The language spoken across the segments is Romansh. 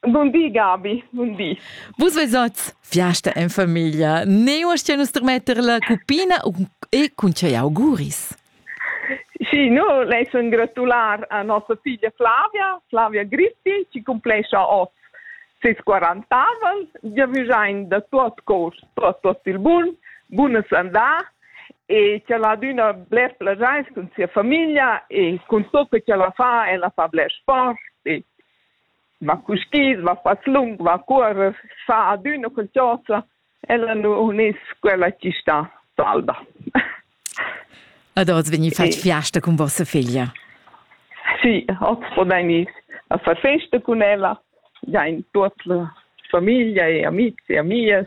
Bun di, Gabi, bun di. Vus veis oz fiasta en famiglia. Ne uastia nus termetter la cupina e cun tgei auguris? Sì, no, lei sun gratular a nossa figlia Flavia, Flavia Grissi, chi cumplescha oz ses 40 aval. Ja vüjain da tuot cor, tuot, tuot il bun, bunas andà e che la adüna bler plagiais cun sia famiglia e cun tot que che la fa, ella fa bler sport e ma cuskiz, ma faclung, ma cuorrer, fa adüna qualchosa, ella nu uniss quella chi sta salda. Ed oz vegni fatg fiasta cun vossa figlia? Sì, oz podain ins far festa cun ella, giain tuot la famiglia e amics e amias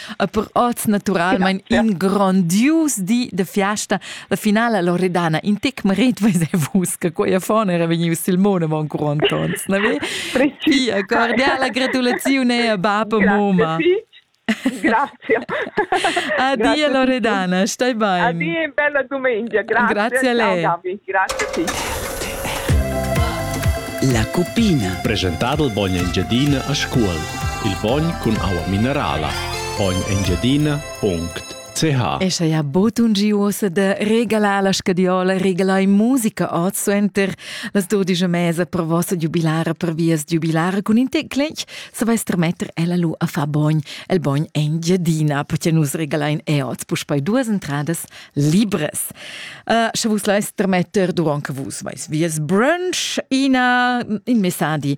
e per oz naturalmein ja, in grondius di de fiasta la finala Loredana in tec maret veis vus che quei fone era vegnius Silmone mon Antons ne ve Pia cordiala gratulazione a baba moma Grazie. Addio Loredana, stai bene. Addio, bella domenica. Grazie, grazie a lei. Ciao, Gabi. Grazie a te. La cuppina. Presentado il Bogna Engiadina a scuola. Il bogn cun aua minerala poign.engiadina.ch E scha ja bod un gi uossa da regalar la scadiola, regalai musica oz suenter las dudisch e mesa per vossa giubilara per vias giubilara cun in tec clec, savais tremetter ella lu a far bogn, el bogn Engiadina, perché nus regalain e oz puspei duas entradas libres. Uh, sche vus lais tremetter durant che vus vais vias brunch, ina in messadi